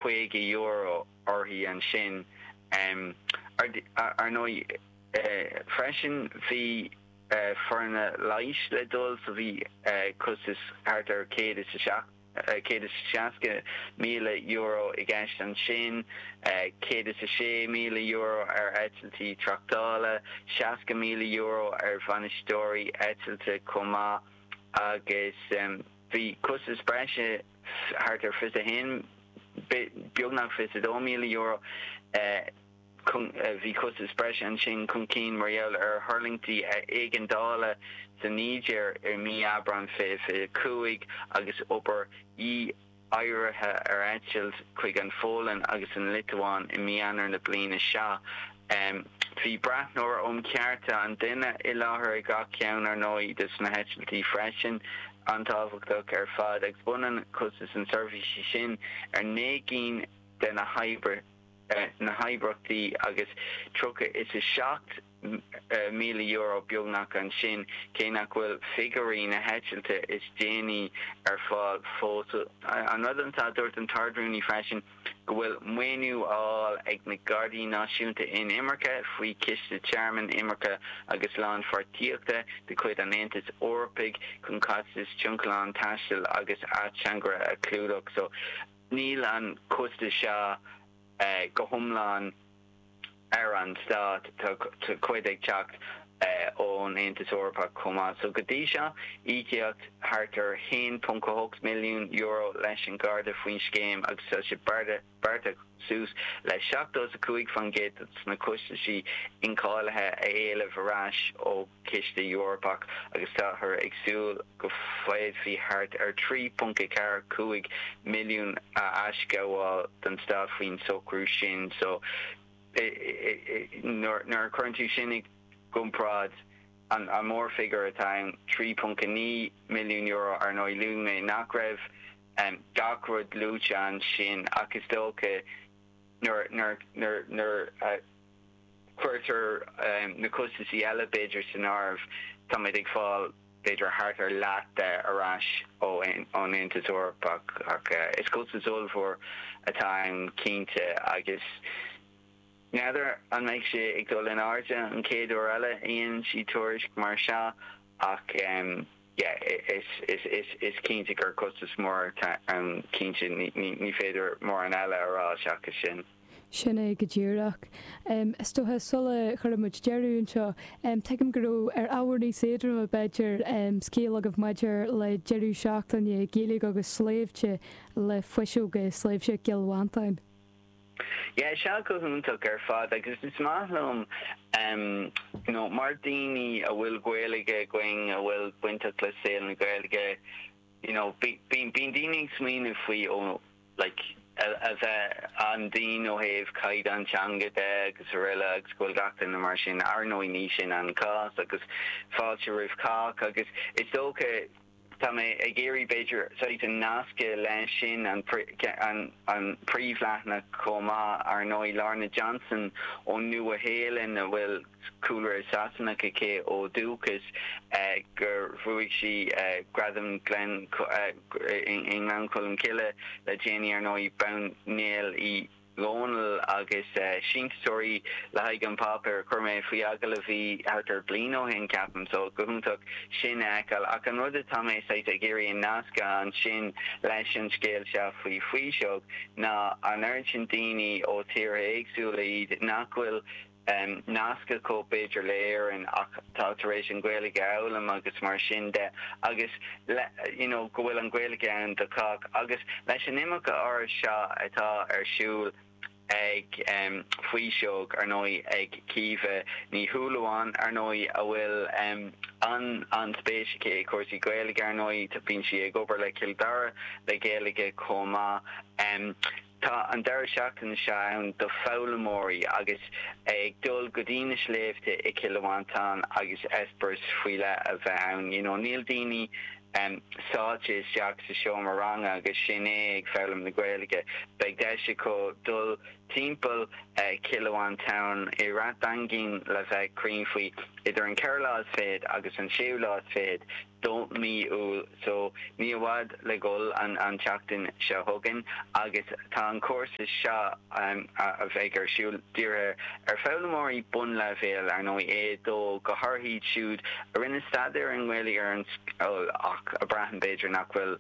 €50 uirthi ansin. Ar ndóigh freisin bhí foirne leighis le dul, so bhí costas thart ar €160,000 i gceist ansin, €106,000 ar eitiltí tráchtála, €60,000 ar bhainisteoirí eitilte chomh maith agus bhí costais breise. thart ar fiche is a haon, beagnach fiche is a dó míle euro. Bhí costas breise ansin chun cinn mar gheall ar thuirlingtí éigeandála sa Nígéir i mí Aibreáin 2025 agus obair dhí-oighearaithe ar eitilt chuig an Pholainn agus an Liotuáin i mí Eanáir na bliana seo. Em. Bhí breathnóir um chearta an duine i láthair ag gach ceann, ar ndóigh, de na heitiltí freisin, an-tábhachtach ar fad, agus b'ionann costas na seirbhíse sin ar naoi gcinn de na hoibre, na hoibrachtaí, agus tríocha is a seacht míle euro beagnach ansin, cé nach bhfuil figiúirí na heitilte is déanaí ar fáil fós. An rud ansan a dúirt an tArd-Rúnaí freisin, go bhfuil maoiniú á fháil ag na Gardaí Náisiúnta Inimirce faoi Chiste Tearmainn Imirce agus Lánpháirtíochta de chuid an Aontais Eorpaigh chun costais tionlacain taistil agus ateangaire a chlúdach. So, níl an costas seo go hiomlán. ar an Stát. Tá cuid ag teacht ón Aontas Eorpach chomh maith. So go dtí seo, íocadh thart ar €1.8 milliún leis an nGarda faoin scéim agus tá sé beartaithe suas le 70 is 5% de na costaisí incháilithe a éileamh ar ais ó Ciste Eorpach agus táthar ag súil go bhféadfaí thart ar 1.35 milliún a aisghabháil don Stát faoin socrú sin. So nuair a chuireann tú sin i gcomparáid, an mórfhigiúr atá ann, €3.9 milliún, ar ndóigh luaigh mé nach raibh gach rud luaite ansin ach is dócha nuair a Cuirtear na costasaí eile, b'fhéidir, san áireamh. Táimid ag fáil, b'fhéidir, thart ar leath de ar ais ón Aontas Eorpach. Ach is costas ollmhór atá ann cinnte. Agus n'fheadar an mbeidh sé ag dul in airde an chéad uair eile a dhéanann siad tuairisc mar seo. Ach yeah is cinnte gur costas mór atá ann, cinnte ní féidir mórán eile a rá seachas sin. Sin é go díreach. Is dócha sula gcuirfidh muid deireadh anseo, tuigim go raibh ar ábhar níos éadroime b'fhéidir, scéal agaibh maidir le deireadh seachtaine Gaeilge agus sléibhte le Fuiseog i Sléibhte Chill Mhantáin. Yeah, is ea, go hiontach ar fad, agus is maith liom, em, you know, mar daoine a bhfuil Gaeilge againn, a bhfuil bainteach le saol na Gaeilge, you know, bí, bíonn, bíonn daoine ag smaoineamh faoi, ó, like, a, a bheith an-dian ó thaobh caighdeán teanga de agus araile agus go bhfuil gach éinne mar sin, ar ndóigh, ní sin an cás, agus fáilte roimh cách, agus is dócha, Tá mé ag iarraidh, b'fhéidir, saghas a nascadh leis sin, an príomhleathanach chomh maith, ar ndóigh, Lorna Johnson ón Nua-Shéalainn, a bhfuil cúlra Sasanach aici ó dhúchas, gur bhuaigh sí Gradam Ghleann i nGleann Cholm Cille le déanaí, ar ndóigh, bean Néill Uí. Dhónaill agus síntiúsóirí le haghaidh an páipéar chuir mé faoi agallamh í thart ar bliain ó shin, ceapaim. So, go hiontach sin a fheiceáil. Ach an rud atá mé saghas ag iarraidh a nascadh ansin leis an scéal seo faoi Fuiseog ná an oiread sin daoine ó tíortha éagsúla, fiú iad nach bhfuil. um nasc acu b'fhéidir le Éirinn ach tá tar éis an Ghaeilge a fhoghlaim agus mar sin de agus like you know go bhfuil an Ghaeilge ann do chách agus leis an imeacht áirithe seo atá ar siúl ag um Fuiseog ar ndóigh ag Caoimhe Ní Shúilleabháin ar ndóigh a bhfuil um an an-spéis aici i cúrsaí Gaeilge ar ndóigh tá bíonn sí ag obair le Cill Dara le Gaeilge chomh maith um Tá an deireadh seachtaine seo ann do foghlaimeoirí agus iad ag dul go dtí na sléibhte i Chill Mhantáin agus eispéireas faoi leith a bheith ann. You know níl daoine sáite isteach sa seomra ranga agus sin é ag foghlaim na Gaeilge. Beidh deis acu dul timpeall Chill Mhantáin i Rath Daingin le bheith cruinn faoi idir an ceathrú lá is fichead agus an séú lá is fichead. de mhí Iúil so ní i bhfad le dhul an tseachtain seo chugainn agus tá an cúrsa seo a bheidh ar siúl dírithe ar foghlaimeoirí bunleibhéil, ar ndóigh, dó go háirithe iad siúd a rinne staidéar i nGaeilge ar scoil ach a braitheann, b'fhéidir, nach bhfuil.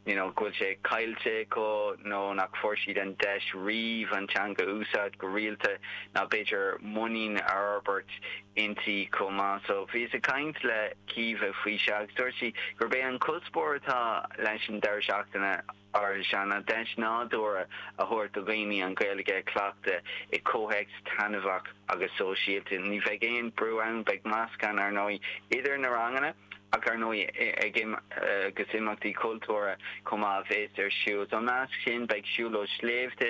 you know, go bhfuil sé caillte acu nó nach fuair siad an deis riamh an teanga a úsáid go rialta ná b'fhéidir muinín a fhorbairt inti chomh maith. So bhíos ag caint le Caoimhe faoi seo agus dúirt sí gurb é an cuspóir atá leis an deireadh seachtaine áirithe seo ná deis nádúrtha a thabhairt do dhaoine an Ghaeilge a chleachtadh i gcomhthéacs taitneamhach agus sóisialta. Ní bheidh aon brú ann, beidh meascán, ar ndóigh, idir na ranganna. Ach ar ndóigh, ag agus imeachtaí cultúrtha chomh maith a bheas ar siúl. Ina measc sin beidh siúlóid sléibhte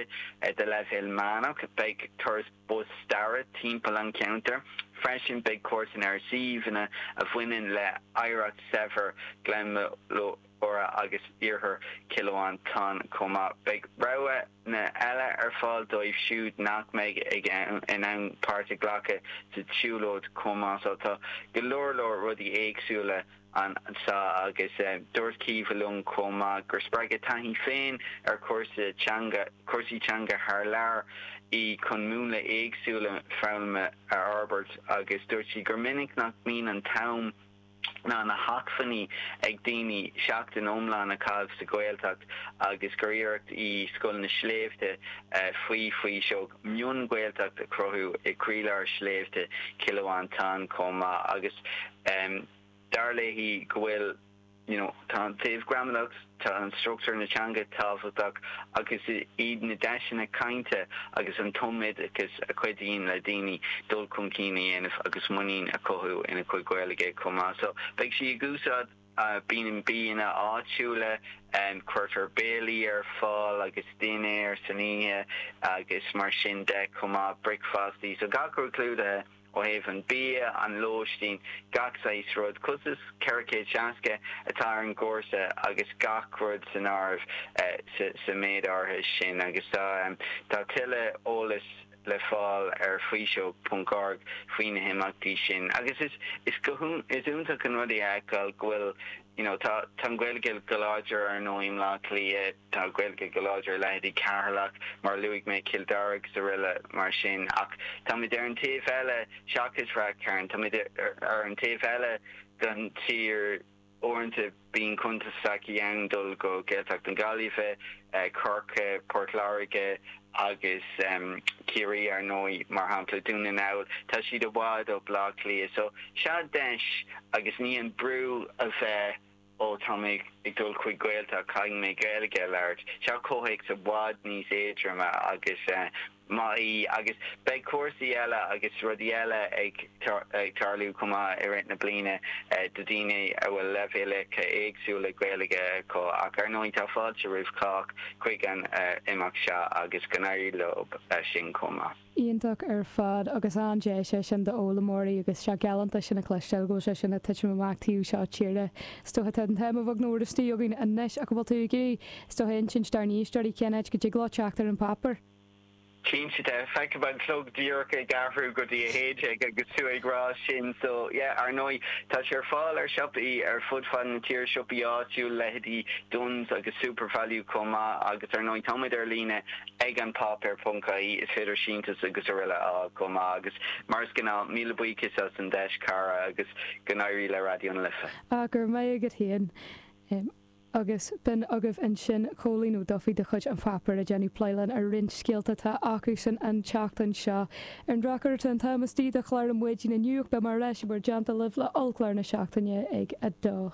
de leibhéal meánach, beidh turas bus staire timpeall an cheantair, freisin beidh cuairteanna ar shuíomhanna a bhaineann le hoidhreacht shaibhir Ghleann Molúra agus iarthar Chill Mhantáin chomh maith. Beidh rogha na eile ar fáil dóibh siúd nach mbeidh in ann páirt a ghlacadh sa tsiúlóid chomh maith. So tá go leor leor rudaí éagsúla anseo agus dúirt Caoimhe liom chomh maith gur spreag a taithí féin ar chúrsa teanga, cúrsaí teanga thar lear í chun múnla éagsúla foghlama a fhorbairt agus dúirt sí gur minic nach mbíonn an t-am ná na hacmhainní ag daoine seachtain iomlán a chaitheamh sa Ghaeltacht agus gur iarracht í Scoil na Sléibhte faoi Faoiseog mion-Ghaeltacht a chruthú i gcroílár shléibhte Chill Mhantáin chomh maith agus dar léi go bhfuil you know tá an taobh gramadach Tá an struchtúr na teanga tábhachtach ach is iad na deiseanna cainte agus an tumoideachas a chuidíonn le daoine dul chun cinn a dhéanamh agus muinín a chothú ina gcuid Gaeilge chomh maith. So beidh sí ag úsáid bia, bianna áitiúla, cuirtear béilí ar fáil agus dinnéar san oíche agus mar sin de chomh maith, bricfeastaí, so gach rud clúdaithe. Ó thaobh an bia, an lóistín, gach saghas rud, costas 460 atá ar an gcúrsa agus gach rud san áireamh sa méid áirithe sin agus tá tuilleadh eolais le fáil ar faoiseog ponc org faoi na himeachtaí sin agus is iontach an rud é a fheiceáil go bhfuil you know tá an Ghaeilge go láidir ar ndóigh i mBleá Cliath. Tá Gaeilge go láidir i leithéidí Ceatharlach, mar a luaigh mé, Chill Dara agus aroile mar sin, ach táimid ar an taobh eile, seachas Rath Chairn, táimid ar an taobh eile den tír. Uaireanta bíonn constaicí ann dul go Gaeltacht na Gaillimhe, Chorcaighe, Port Láirge agus Ciarraí, ar ndóigh, mar shampla Dún na nGall, tá siad i bhfad ó Bhleá Cliath. So sea deis agus ní an brú a bheith. Ó tá mé ag dul chuig Gaeltacht, caithfidh mé Gaeilge a labhairt. Seo comhthéacs i bhfad níos éadroime agus má tá, agus beidh cúrsaí eile agus rudaí eile ag tarlú chomh maith i rith na bliana do dhaoine a bhfuil leibhéalacha éagsúla Gaeilge acu ach ar ndóigh tá fáilte roimh chách chuig an imeacht seo agus go n-éirí leo sin chomh maith. Iontach ar fad agus an-deis é sin d'fhoghlaimeoirí agus sea, go hálainn ar fad sin a chloisteáil, go bhfuil sé sin ag titim amach taobh seo tíre. Is dócha tá an t-am ag a bheith nach mór istigh againn anois ach an bhfuil tú ag iarraidh, is dócha, insint dár n-éisteoirí cén áit go dtig leo teacht ar an pháipéar? Cinnte de. Feicim an clog díreach ag athrú go dtí a haon déag agus tú ag rá sin so yeah, ar ndóigh, tá sé ar fáil i siopaí ar fud fad na tíre, siopaí áitiúla, leithéidí Dunnes agus Supervalu chomh maith agus ar ndóigh, táimid ar líne. ag An Páipéar ponc ie, is féidir síntiús agus aroile a fháil chomh maith agus mar is gnáth, míle buíochas as an deis, a chara, agus go n-éirí le Raidió na Life. Á go raibh maith agat féin. Agus b'in agaibh ansin Cóilín Ó Dubhthaigh de chuid An Páipéar ag déanamh plé linn ar roinnt scéalta atá acusan an tseachtain seo. Ar an drochuair tá an t-am istigh do chlár na maidine inniu ach beidh muid ar ais in bhur dteannta libh le ollchlár na seachtaine ag a dó.